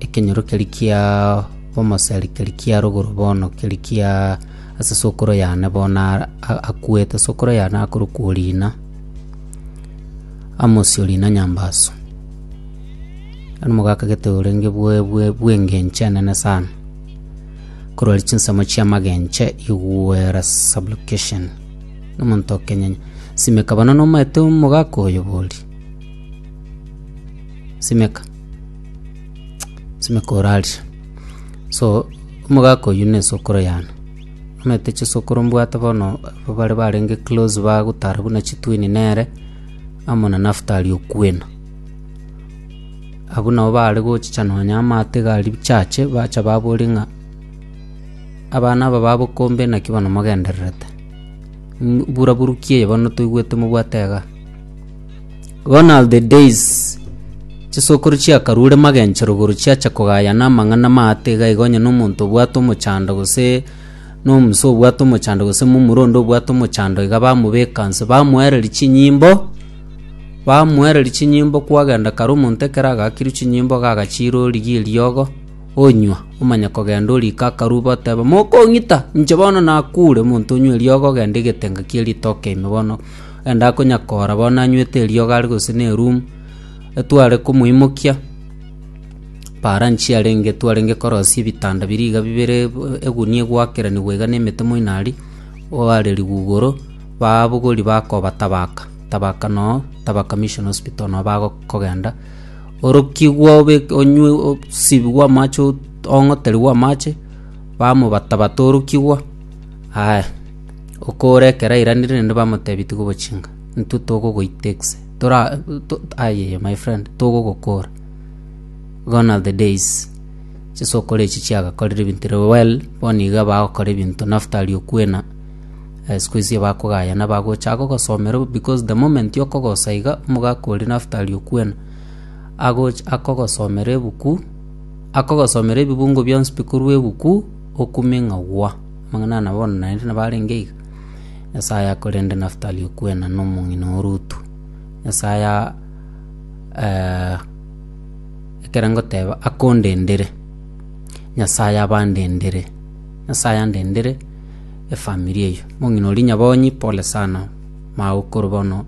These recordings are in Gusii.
Ekenyorokeri kia omoserikari kia rogoro bono keri kia ase sokoro yane bono akwete, sokoro yane akorokwa Orina, Amosi Orina Nyambaso. Nomogakagete orenge bw'engencho enene sana, korwa ere chinsemo chi'amagencho igwera sublocation. Nomonto o Kenya simeka bono nomaete omogaka oyo bori, simeka. Simeka orarie. So, omogaka oyio na esokoro yane. Omanyete chisokoro mbwate bono abwo bare barenge close bagotara buna chitwin nere, amo na Naftali okwena. Abwo nabo bare gochicha nonya amato iga aria chache, bacha baboria ng'a abana aba ba bokombe naki bono mogendererete? Mbu- mburaburuki eye bono toigwete mobwate igaa. Gone are the days chisokoro chiakarure magencho rogoro chiacha kogayana amang'ana maate iga iga onye nomonto obwate omochando gose nomusa obwate omochando gose momura onde obwate omochando iga bamobeka nse bamoereria chinyimbo bamoereria chinyimbo kwagenda kare omonto ekero agakirwe chinyimbo iga agachira origie eriogo onywa omanya kogenda orika akarwa bateba mokong'ita inche bono nakure omonto onywe eriogo ogende egetenga kia ritoke ime bono. Enda akonyakoora bono nanywete eriogo are gose nerumu, etware komoimokia. Paara nchiarenge etwarenge korosia ebitanda biria iga bibere, egunia egwakeranigwa iga nemete moino aria, oare rigugoro, baabogori bakoba tabaka, tabaka noo, tabaka mission hospital noo bagokogenda. Orokigwe obeke onywe osibigwe amache ong'oterigwe amache, bamobatabata orokigwa, aya. Okore ekero airanire naende bamoteebia tikobochiinga, intwe togogoita egese, tora to ayaya my friend togogokoora. Gone are the days chisokoro echi chiagakorire ebinto ere well, bono iga bagokora ebinto na after riokwena, sikuhizi bakogayana bagocha gogosomera bo because the moment okogosa iga, omogaka oria na after riokwena, agocha akogosomera ebuku, akogosomera ebibungo bionsi bikorwa ebuku, okume ng'a gwa. Amang'ana aya nabono naende nabo arenge iga, Nyasae ayakorende Nafutali okwena nomong'ina o Rutu. Nyasae aya ekero ngoteba akondendere, Nyasae abandendere, Nyasae andendere efamiri eyio. Mong'ina oria nyabonyi pole sana, magokoro bono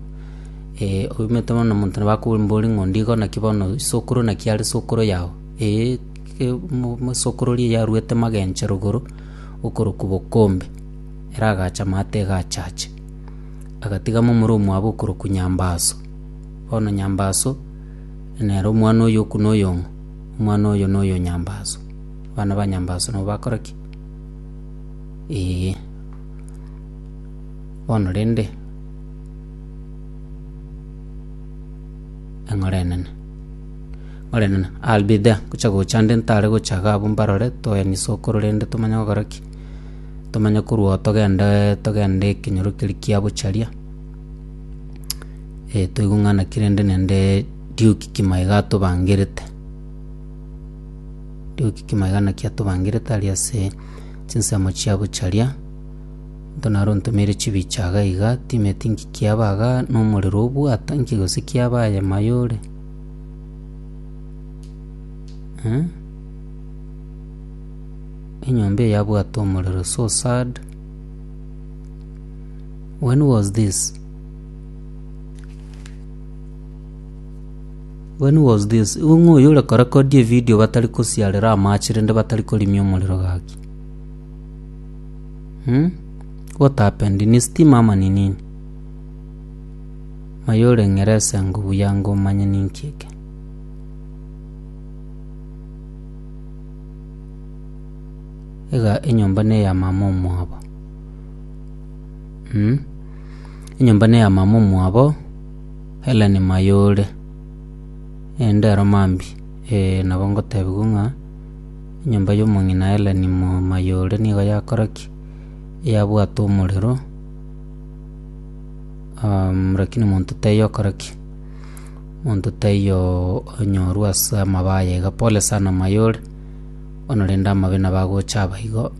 oumete bono omonto nabo akobori mbori ng'a ondigo naki bono isokoro naki are sokoro yao, eeh mosokoro oria yarwete magencho rogoro. okorokwa Bokombe, ere agaacha amato egaachache, agatiga momura omwabo okorokwa Nyambaaso. Bono Nyambaaso nere omwana oye o Kuna oyong'o, omwana oyo noyo Nyambaaso. Abana ba Nyambaaso nabo bakora ki? Eeh. Bono rende, eng'ora enene. Orenene, I'll be there, gocha gocha nde ntare gocha iga abwo mbarore, toyanie sokoro rende tomanye gokora ki. Tomanye korwa oo togende togende ekenyoro keria kia bocharia. Eh toigwe ng'ana ki rende nende Duke kimo iga atobangerete. Duke kimo iga naki atobangerete aria ase chinsemo chia bocharia, nto naro ntomeire chibicha iga iga, timeti nki kiaba iga, nomorero obwata nki gose kiaba aye mayo ore. Enyomba eye yabwate omorero so sad. When was this? When was this? Igo ng'o oyo ore korekodi evidio batari kosiarera amache rende batari korimia omorero gaki? Hmm? What happened? Ni stima ama ni nini? Aye ore Ngeresa ngo buya ngo manye ninki eke. Iga enyomba ne ya mama omwabo. Mh. Enyomba ne ya mama omwabo Hellen maye ore. Ende ero mambi. Ee nabo ngotebigu ng'a enyomba yo mong'ina Hellen mo maye ore nigo yakora ki? Yabwate omorero. Lakini monto taiyo okora ki? Monto taiyo onyorwa ase amabaa aye iga, pole sana amaye ore, bono rende amabe nabo agocha aba igo.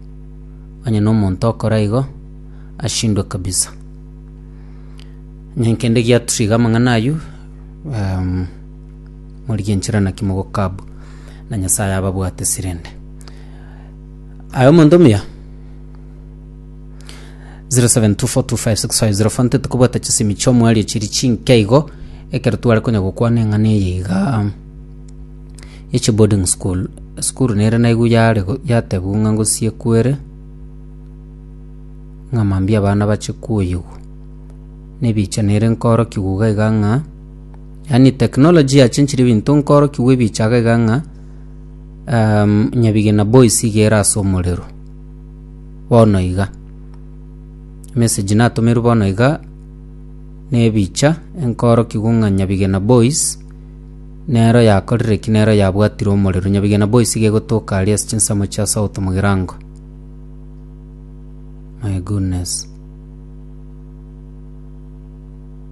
Onye na omonto okora igo, ashindwe kabisa. Onye kende giatusire iga amang'ana aywo, morigie nchera naki mogoka abwo, na Nyasaye ababwate sirende. Aye omonto omuya? 0724256504 ntete kobwata chisemi chi'omoerio chiri chinke igo ekero tware konya gokwana eng'ana eye iga ya chiboarding school esukuru nere naigu yare go- yatebiwa ng'a ngosie kwere ng'a mambia abana bache koyigwa na ebicha nere nkoorokiwa iga iga ng'a yaani technology yachenchire ebinto nkoorokiwa ebicha iga iga ng'a nyabigina boys iga ere ase omorero. bono iga. Emessage natomerwe bono iga nebicha enkorokigwe ng'a Nyabigena Boys nero yakorire ki nero yabwatire omorero. Nyabigena Boys iga egotoka aria ase chinsemo chia south mogirango. My goodness.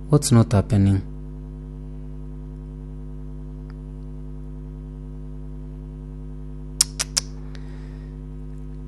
What's not happening?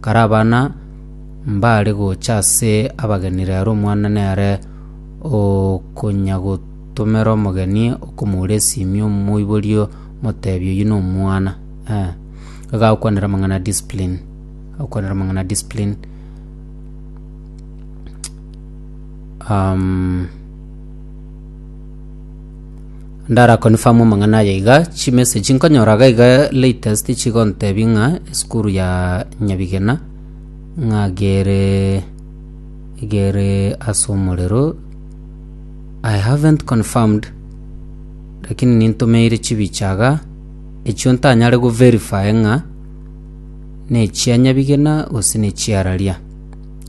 Kare abana mbaare gocha ase abageni reero omwana nere okonyagotomera omogeni okomoura esimi omoiborie omoteebie oyio nomwana eh. Iga agokwanera amang'ana a discipline, agokwanera amang'ana a discipline um. Ndara confirm amang'ana aya iga chimessage nkonyora iga iga latest chigontebia ng'a esukuru ya Nyabigena ng'a gere gere ase omorero I haven't confirmed lakini nintomeire chibicha iga echio ntanyare go verify ng'a nechia Nyabigena gose nechia Araria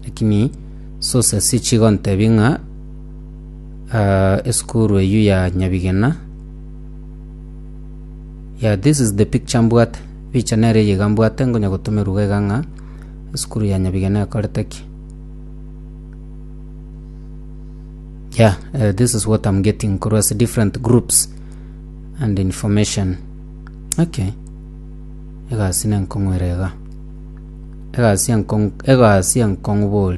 lakini sources chigontebia ng'a Ah, esukuru eyio ya Nyabigena. Yeah, this is the picture mbwate. Picha nere eye iga mbwate ngonya gotomerwa iga ng'a esukuru ya Nyabigena ekorete ki. Yeah, uh, this is what I'm getting korwa ase different groups and information. Okay. Egasi nenkong'were iga. Egasi enkong egasi enkong'u bori.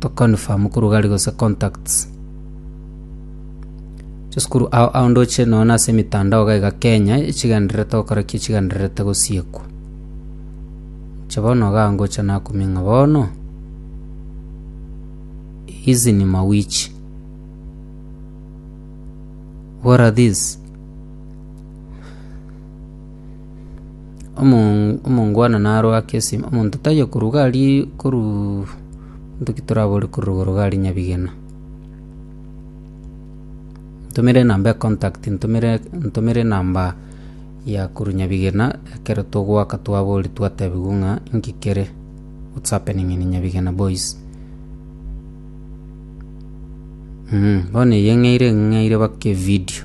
to confirm korwa gari gose contacts chisukuru ao ao ndoche nonya na ase emetandao iga iga kenya echigendererete gokora ki echigendererete gosiekwa inche bono iga ngocha nakumia ng'a bono hizi ni mawichi what are these. Omo- omongwana narwe ake esimo, omonto taiyo korwa iga aria koruu nto ki torabore korwa igoro iga aria nyabigena. Ntomere enamba ya contact ntomere ntomere enamba ya korwa nyabigena ekero togoaka twabori twatebigwa ng'a inki kere what's happening in nyabigena boys bono eye ng'eire ng'eire baka evidio.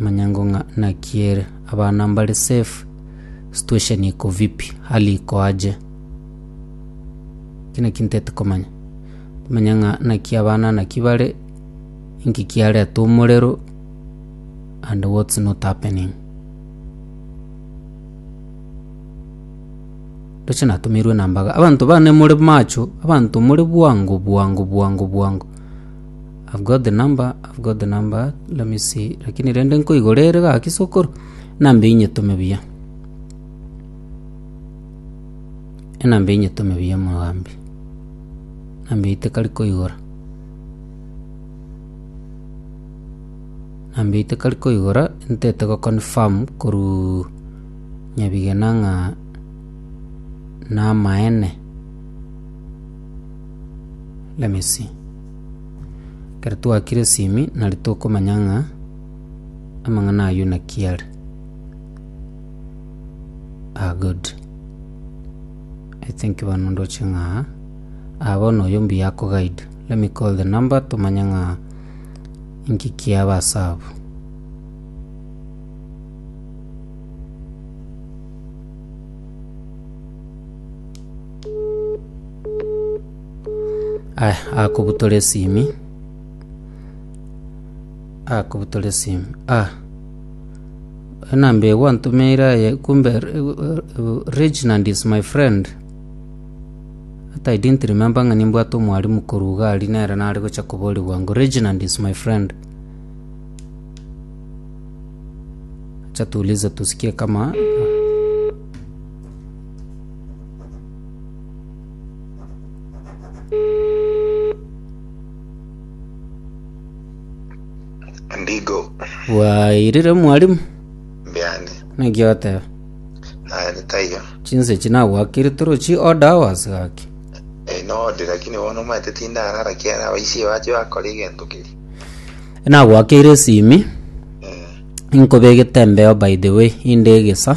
Manyango ng'a naki ere. Abana mbare safe. Situation iko vipi? Hali iko aje? Kina kintete komanya. Manya ng'a naki abana naki bare, inki kiareta omorero and what's not happening. Ndoche natomeirwe namba iga. Abanto bane more macho, abanto more bwango bwango bwango bwango. I've got the number, I've got the number, let me see. Lakini rende nkoigora ere gaki sokoro, enamba eyio nyetome buya. Enamba eyio nyetome buya mogambi. Enamba eyio tekari koigora. Enamba eyio tekari koigora, ntete go confirm korwa nyabigena ng'a namaene. Let me see. Ekero twakire esimi, nari tokomanya ng'a amang'ana ayio naki are. Ah, good. I think bono ndoche ng'a aa. Ah, bono oyo mbuya akoguide. Let me call the number tomanye ng'a inki kiaba ase abwo. Aya, akobutora esimi, akobutora esimi ah, enamba eye gwantomeire aye kumbe Re- Re- Reginald is my friend but I didn't remember ng'a nimbwate omwarimu korwa iga aria nere nare gocha koboria bwango Reginald is my friend acha tuulize tusikie kama Ndigo bwairire mwalimu mbiane naki oteba naende taiyo chinse echi nagwakire torochi oda hours gaki Eh, node lakini bono omanyete tindarara kiara abaisi bache bakora egento keri nagwakire esimi Eh, inkobegete embeo by the way inde egesa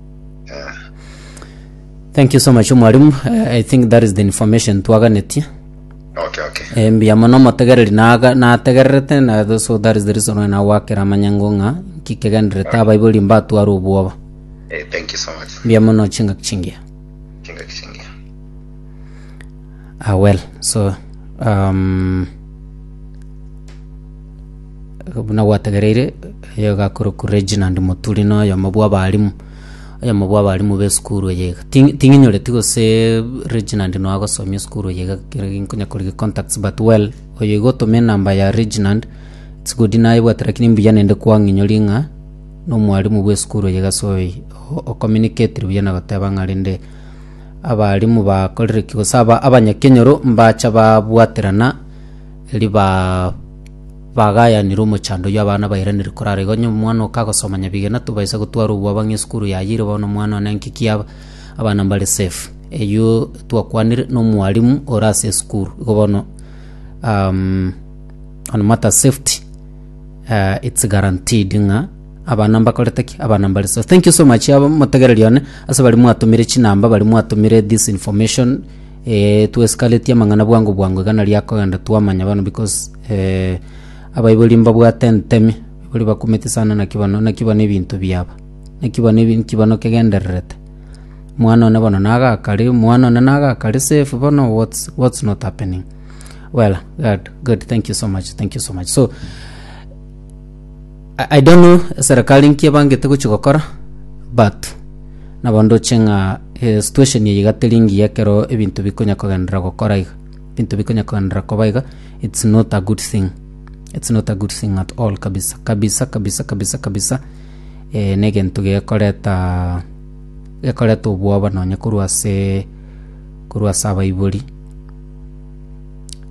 Thank you so much mwalimu. Eh, I think that is the information twaganetie. okay okay Eh, mbuya mono omotegereri naga- nategererete na tho- so that is the reason why nagwakera amanyango ng'a nkikegenderete abaibori mbatware obwoba. eh, thank you so much Mbuya mono chingaki chingiya. chinga kichingia Ah, well, so um, buna gwategereire oyo gakorokwa Reginald Muturi na oyomo bwa abarimu oyomo bwa abarimu b'esukuru eye iga. Ti- ting'inyoreti gose Reginald no agosomia esukuru eye iga kero nkonya korigia contacts but well oyo iga otome enamba ya Reginald it's good nayebwate lakini mbuya naende kwang'inyoria ng'a na omwarimu bw'esukuru eye iga so oyi o- o communicate buya na goteba ng'a rende Abarimu bakorire ki? Gose aba- abanyakenyoro mbacha babwaterana riba bagayanire omochando oyio abana bairanire korara igo. Onye omwana oka agosoma nyabigena tobaisa gotwara obwo abang'e esukuru yayiire bono omwana one nki ki aba, abana mbare safe. Eyio twakwanire na omwarimu ore ase esukuru. Igo bono on matter of safety it's guaranteed ng'a. Abana mbakorete ki? Abana mbare so. Thank you so much aba motegereri one ase bari mwatumire chinamba bari mwatumire this information eh, twesikaretie amang'ana bwango bwango iga naria akogenda twamanya bono because eh, abaibori mbabwate entemi bari bakumeti sana naki bono naki bono ebinto biaba naki bono ebi nki bono kegendererete mwana one bono nagakare mwana one nagakare safe bono what's, what's not happening well good, good thank you so much thank you so much so I, I don't know serikali nki ebangete gochi gokora but nabo ndoche ng'a eh, situation eye iga teri ngiya ekero ebinto bikonya kogenderera gokora iga ebinto bikonya kogenderera koba iga it's not a good thing it's not a good thing at all kabisa kabisa kabisa kabisa kabisa eh, na egento gekoreta gekoreta obwoba nonya korwa ase korwa ase abaibori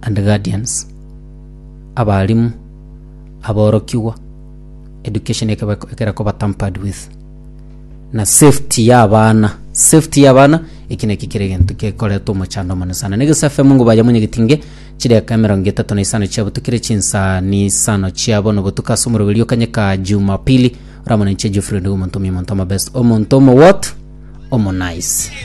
and guardians abarimu aborokigwa, education ekaba ekera koba tampered with na safety ya abana safety ya abana eki naki kere egento kekoreta omochando omonene sana na egesafe mungu baye monyegetinge chideka emerongo etato na isano chia botuko ere chinsa ni isano chia bono botuko ase omoroberio kanyeka jumapili oramonenche geoffrey ndigo omonto omuya omonto omabest omonto omo what omo nice